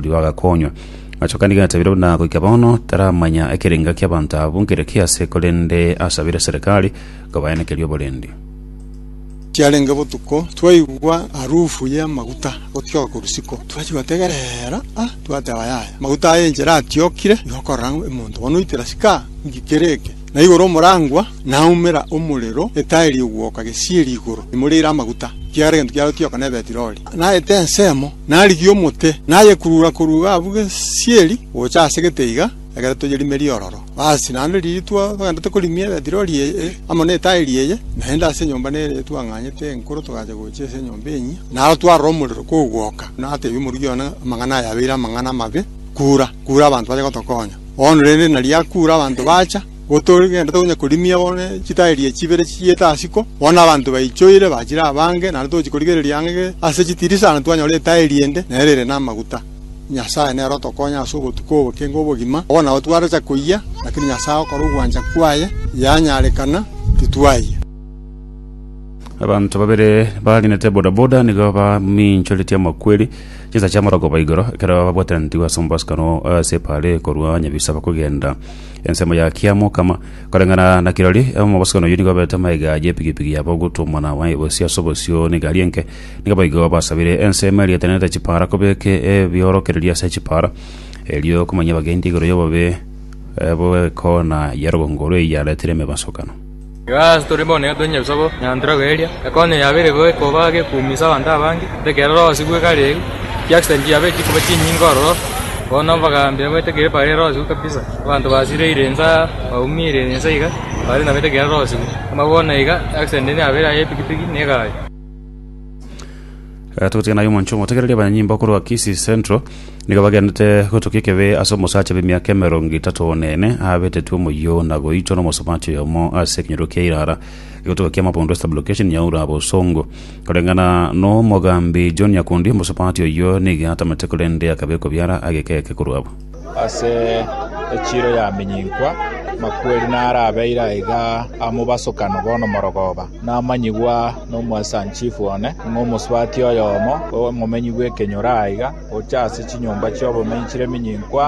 Rigo agakonywa. Achoka nigo atabire buna goika bono taramanya ekerenga ki'abanto abwo nkere ki ase, korende asabire serikali kobaenekeria oborendi. Chiarenge botuko, twaigwa harufu y'amaguta gotioka korwa isiko, twachia gotegerera, a twateba, Yaya, amaguta aya enchera atiokire, nigo okorora ng'a omonto bono oitera sika, nki kere eke? Na igoro omorangwa naumera omorero, etaeri egwoka gesieri igoro, imoreire amaguta, ekiagera egento kiarotioka nebetirori. naete ensemo, narigie omote, nayekurura-kurura abwo gesieri gocha ase geteiga, ekero toyerimerie ororo. Basi, naende riria twagenderete korimia Beti-Rori eye, amo netaeri eye, naende ase enyomba nere twang'anyete enkoro togacha gocha ase enyomba enyia, naro twarora omorero kogwoka. Natebia omoruki one, Amang'ana aya abeire amang'ana amabe, kura, kura abanto bache gotokonya. Bono rende nari akura abanto bacha. Gotogendete onye korimia bono ne chitaeri echi chibere chichiete asiko, bono abanto baichoire bachire abange, naende togochi korigereria ang'e ase chitirisa na twanyora etaeri ende nere ere namaguta. Nyasae nere otokonya ase ogotuka obokenga obogima, obo nao twaracha koyia, lakini Nyasae agokora ogwancha kwaye, yanyarekana, titwayia. Abanto babere bagenete bodaboda nigo baminchoretie amakweri chinsa chi'amarogoba igoro ekero babwatananeti ase omobosibwa no ase epaale korwa Nyabisaba kogenda Ensemo ya kiamokama koreng'ana na kirori omobosokano oyio nigo aberete amaiga y'epigipigi yabo ogotwa omwana waye bosio ase obosio n'egari enke nigo boigo basabire ensemo eriatanete chipara kobeke ebiorokererio ase chipara erio komanyia abagendi igoro y'obobe eh, bw'ekona ya rogongo rw'eyio yaretire emebasokano Igo ase tore bono nigo tonya ebisaku nyantera koeria ekonyo yabo ere goika obo age kuumisa abanto abange, ekerero orosi goika areu, chi accident chiabo echi chikoba chinyinge ororo, bono obogambi oboete ekero bare orosi goika kabisa, abanto basireire inse aa, baumiire inse iga, bare nabete ekero orosi goika. Amaboko na iga accident nigo yabeire aye ye piki piki ne egari. Eh, togotiga naye omoncho omotegereria abanyanyimba okorwa kisi central nigo bagenete gotoka ekebe ase omosacha b'emiaka emerongo etato one ene abetetwe omoyio na goitwa n'omosomachi oyomo ase ekenyoro kia irara egotoka kia mabondo west location nyaura bosongo koreng'ana n'omogambi john nyakundi omosopati oyio nigo atamete korende akabekwa biara ageka eke korwa abo Ase echiiro yaminyinkwa, amakweri narabeire aiga amobasokano bono morogoba, namanyigwa nomwesanchifu one, ng'a omosubati oyomo, omomenyi bw'ekenyoro aiga, ocha ase chinyomba chi'obomenyi chire minyinkwa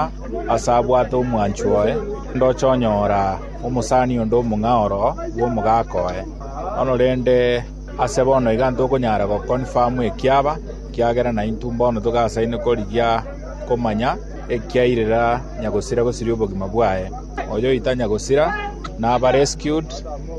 aase abwate omwancho oye, ndoche onyora omosani onde omong'a oro bw'omogaka oye. Bono rende ase bono iga ntokonyara goconfirm ekiaba, ekiagera naintwe mbono togasaine korigia. komanya ekiairera nyagosira gosiria obogima bwaye. Oyoitanya gosira naba rescued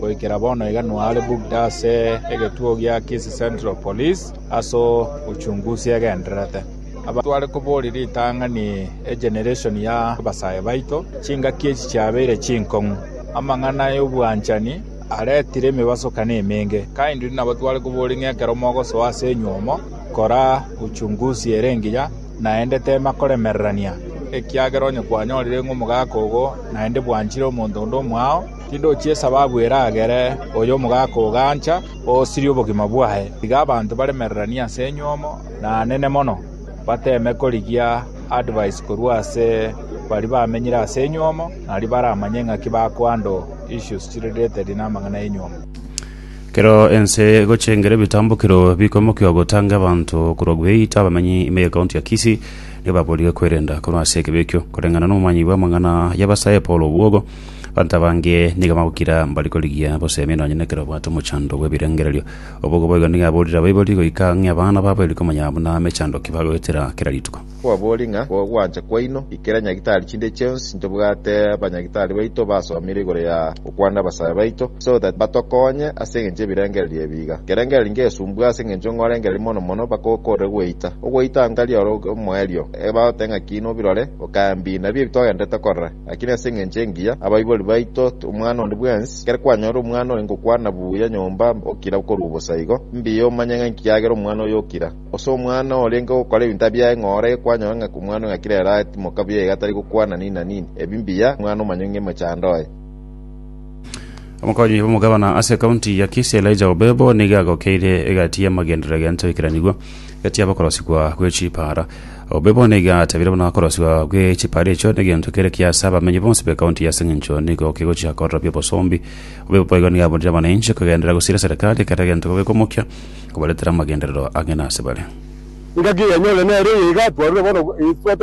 goikera bono iga noare booked ase egetuo gia Kisii Central Police aso uchunguzi egendererete. Abanto tware kobori ritang'ani egeneration ya abasae baito chingaki echi chiabeire chinkong'u. Amang'ana ayobwanchani aretire emebasokano emenge. Kindly nabo tware kobori ng'a ekero mogosoa ase enywomo, Kora uchunguzi ere engiya, naende teema koremererania, ekiagera onye kwanyorire ng'a omogaka ogo naende bwanchire omonto onde omwao, tindochia esababu eragere oyo omogaka ogo gancha oosirie obogima bwaye. Tiga abanto baremereranie ase enyomo, na anene mono, bateeme korigia advise korwa ase baria bamenyire ase enyomo, nario baramanye ng'aki bakohandle issues chire related namang'ana y'enyomo. Ekero ense egochengera ebitambokero bikoimokia ogotanga abanto korwa Gueita, abamenyi ime y'ekaunti ya Kisii nigo baboorire kwerenda korwa ase ekibe ekio. Koreng'ana n'omomanyi bw'amang'ana y'abasae Paul Obwogo, abanto abange nigo bagokira mbari korigia boseemie nonya nekero babwate omochando bw'ebirengererio. Obwogo boigo nigo aboorire abaibori goika ng'a abana babo eri komanya buna mechando ki bagoetera kera rituko. Kwabori ng'a gwancha kwaino ikera nyagitari chinde chionsi ntobwate banyagitari baito basomire igoro ya gokwana abasae baito so that batokonye ase engencho y'ebirengererio ebi iga. Kerengererio ngesumbua ase engencho ng'orengereria mono mono mpaka okorere gweita. Ogweita ngari ore omoerio ebagote ng'aki nobirore okae mbi nabio ebi togenderete korora lakini ase engencho engiya abaibori baito omwana onde bwensi ekero kwanyora omwana oye ngokwana buya nyomba okira okorwa bosa igo mbiya omanye ng'a inki kiagera omwana oyo okira. Ase omwana orenge gokora ebinto biaye ng'a ore kwanyora ng'a omwana o ng'akire ere aetimoka buya iga tari gokwana nini na nini. Ebi mbiya, omwana omanye ng'a emochando oye. Omokonyi bw'omogabana ase ekaunti ya Kisii Elijah Obebo nigo agokeire egati y'amagenderero egento ekeranigwa egati y'abakorosigwa gwe chipaara. Obebo nigo atebire buna okorosigwa gwe chipaara echio negento kere kiya ase abamenyi bonsi b'ekaunti eye aseng'encho nigo kegochia kororobia obosombi. Obebo igo nigo aburire abanainche kogenderera gosiria serikali kera egento gobeka omokia. kobaretera amagenderero ang'e nasebare. Engaki eyanyore nere eye iga twarure bono, twateba.